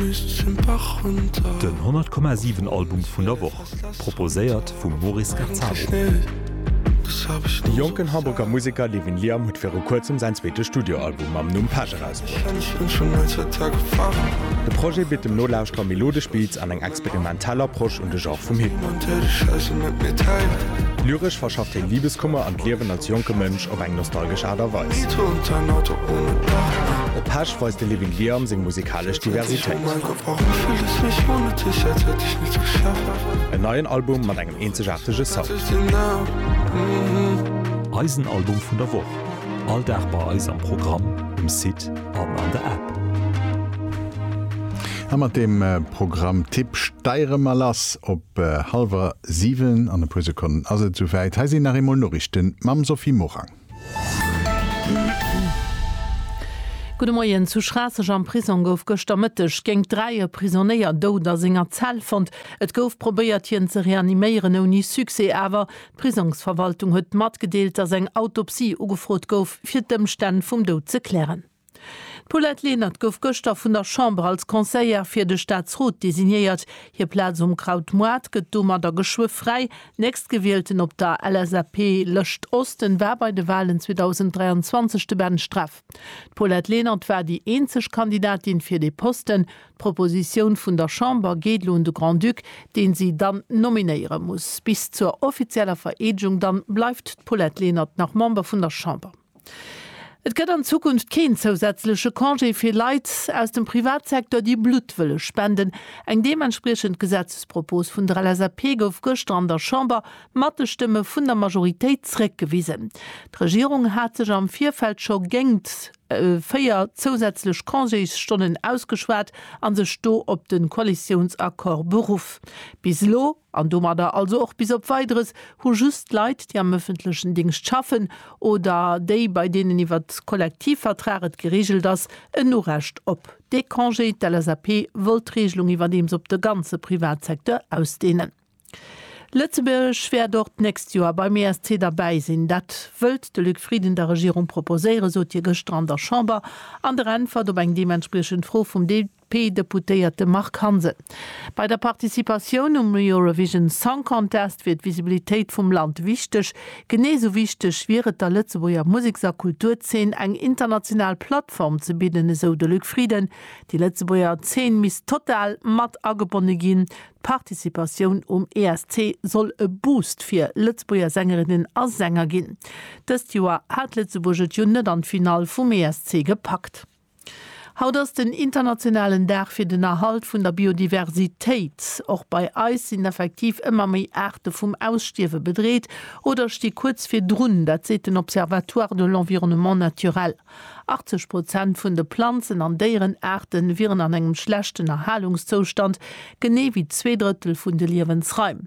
Den 100 Komma 7 Album vun der Woch, proposéiert vum Moris Gazzaro. De jonken Hamburger Museker Levin Liam huet viru kuerzem säin zweete Studioalbum mam Numm Pech erausbruet. De Projet bitt dem Nolauschterer melodesch Beats an eng experimentell Approche un de Genre vum Hip Hop. Lyresch verschafft hien Libeskummer an d'Liewen als jonke Mënsch op eng nostalgesch Aart a Weis. Op Pech weist de Levin Liam seng musikalesch. ënnerschellg Diversitéit. En neien Album mat engem eenzegaartege Sound. Eisen Album vun der Woch, all Dag bei eis am Programm, um Site an an der App. A mat deem Programmtipp steiere mer lass op hallwer 7. An e puer Sekonnen ass et esouwäit. Hei sinn nach eemol Noriichten mam Sophie Morang. Gudde Moien, Zu Schraasseg am Prisong gouf gëschter Mëtteg géint dräi e Prisonéier dout a senger Zell fonnt. Et gouf probéiert hien ze reaniméieren, ouni Succès awer. D'Prisongsverwaltung huet matgedeelt, datt eng Autopsie ugefrot gouf, fir d'Ëmstänn vum Doud ze klären. D'Paulette Lenert gouf gëschter vun der Chamber als Conseillère fir de Staatsrot designéiert. Hir Plaz um Kraut Moart gëtt domadder geschwë fräi. Nächstgewielten op der LSAP-Lëscht Osten war bei de Walen 2023 de Ben Streff. D'Paulette Lenert war déi eenzeg Kandidatin fir dee Posten. D'Propositioun vun der Chamber geet elo un de Grand-Duc, dee si dann nominéiere muss. Bis zur offizieller Vereedegung dann bleift d'Paulette Lenert nach Member vun der Chamber. Et gëtt an Zukunft keen zousätzleche Congé fir Leit aus dem Privatsecteur, déi Blutt wëlle spenden. Eng deementspriechend Gesetzespropos vun der LSAP gouf gëschter an der Chamber mat de Stëmme vun der Majoritéit zréckgewisen. D'Regierung hat sech am Virfeld scho géingt véier zousätzlech Congésstonnen ausgeschwat a sech do op de Koalitiounsaccord beruff. Bis elo an domadder also och bis op Weideres, hu just Leit, déi am ëffentlechen Dingscht schaffen oder déi, bei deenen iwwer Kollektivvertrag et gereegelt ass, en Urecht op dee Congé. D'LSAP wollt d'Reegelung iwwerdeems op de ganze Privatsecteur ausdeenen. Lëtzebuerg wäert och d'nächst Joer beim ESC derbäi sinn. Dat wëllt de Luc Frieden der Regierung proposéieren, sot hie gëschter an der Chamber an der Äntwert op eng deementspriechend Fro vum Dep. D'LSAP-Deputéierte Marc Hansen, Bei der Participatioun um Eurovision Song Contest wier d'Visibilitéit vum Land wichteg. Genee esou wichteg wier et der Lëtzebuerger Museks a Kulturzeen eng international Plattform ze bidden, esou de Luc Frieden. Déi Lëtzebuerger Zeen misst total mat agebonne ginn. D'Participatioun um ESC soll e Boost fir Lëtzebuerger Sängerinnen a Sänger ginn. Dëst Joer hat Lëtzebuerg et jo net an d'Finall vum ESC gepackt. Haut ass den internationalen Dag fir den Erhalt vun der Biodiversitéit. Och bei eis sinn effektiv ëmmer méi Aarte vum Ausstierwe bedreet oder sti kuerz virdrun, dat seet den Observatoire de l'environnement naturel. 80 Prozent vun de Planzen an Déierenaarte wieren an engem schlechten Erhalungszoustand, genee wéi zwee Drëttel vun de Liewensraim.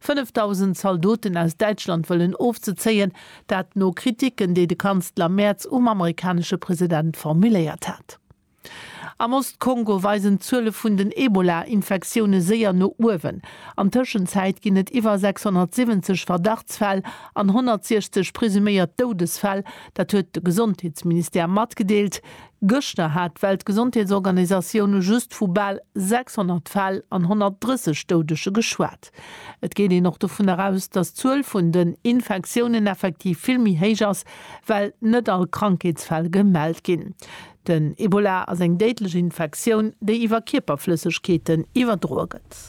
5.000 Zaldoten aus Däitschland wëllen ofzezéien, dat no Kriticken, déi de Kanzler Merz um amerikanesche President formuléiert hat. Am Ost-Kongo weisen d'Zuele vun den Ebola-Infektioune séier no uewen. An Tëschenzäit ginn et iwwer 670 Verdachtsfäll an 160 presuméiert Doudesfäll, dat huet de Gesondheetsministère matgedeelt. Gëschter hat d'Weltgesondheetsorganisatioun just vu bal 600 Fäll an 130 Doudege geschwat. Et geet een och dovun eraus, datt d'Zuel vun den Infektiounen effektiv vill méi héich ass, well net all Krankheetsfäll gemellt ginn. Den Ebola ass eng déidlech Infektioun, déi iwwer Kierperflëssegkeeten iwwerdroe gëtt.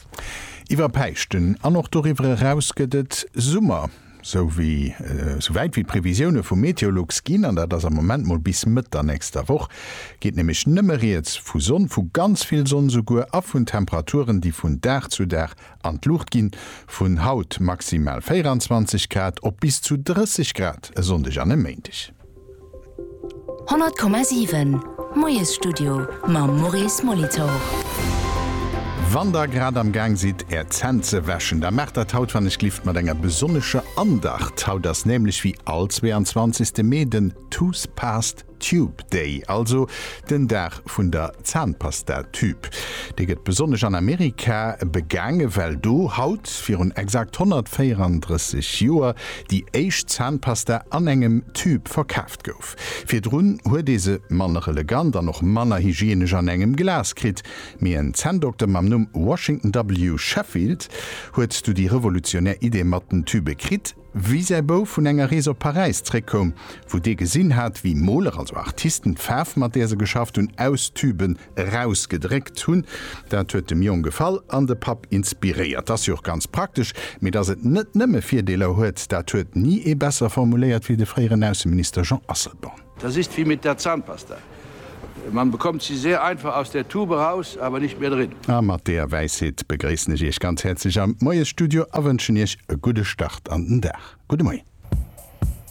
Iwwer Päischten an och doriwwer eraus gëtt et Summer. Sou wéi sou wäit wéi d'Previsioune vu Meteolux ginn, an dat ass am Moment mol bis Mëtt der nächster Woch, geet nämlech nëmme rieds vu Sonn, vu ganz vill Sonn souguer, a vun Temperaturen, déi vun Dag zu Dag an d'Luucht ginn, vun haut maximal 24 Grad op bis zu 30 Grad e Sonndeg an e Méindeg. 100,7 Moiesstudio mam Maurice Molitor. Wann der grad am Gaang sidd är Zänn ze wäschen, da maacht dat haut wann ech gelift mat enger besonnescher Andacht. Haut ass nämlech wéi all 22 Mee den Toothpaste Tube Day, also den Dag vun der Zahnpasta-Tüb. Dee gëtt besonnesch an Amerika begaange well do haut virun exakt 134 Joer déi éischt Zahnpasta an engem Tüb verkaaft gouf. Virdrun huet ee se manner elegant an och manner hygienesch an engem Glas kritt, mee en Zänndokter mam Numm Washington W. Sheffield huet du déi revolutionär Idee mat den Tübe kritt. Wéi säi Bouf vun enger Rees op Paräis zréckkoum, wou dee gesinn hat, wéi Moler, also Artisten, d'Faarf, mat där se geschafft hunn, aus Tüben erausgedréckt hunn, dat huet dem Jong gefall an de Papp inspiréiert. T'ass jo och ganz praktesch, mee dass et net nëmme Virdeeler huet, dat huet ni ee besser formuléiert wéi de fréieren Ausseminister Jean Asselborn. Das ist wie mit der Zahnpasta, man bekommt sie sehr einfach aus der Tube heraus, aber nicht mehr drin. A mat deeër Wäisheet begréissen ech Iech ganz häerzlech am Moiesstudio a wënschen Iech e gudde Start an den Dag. Gudde Moien.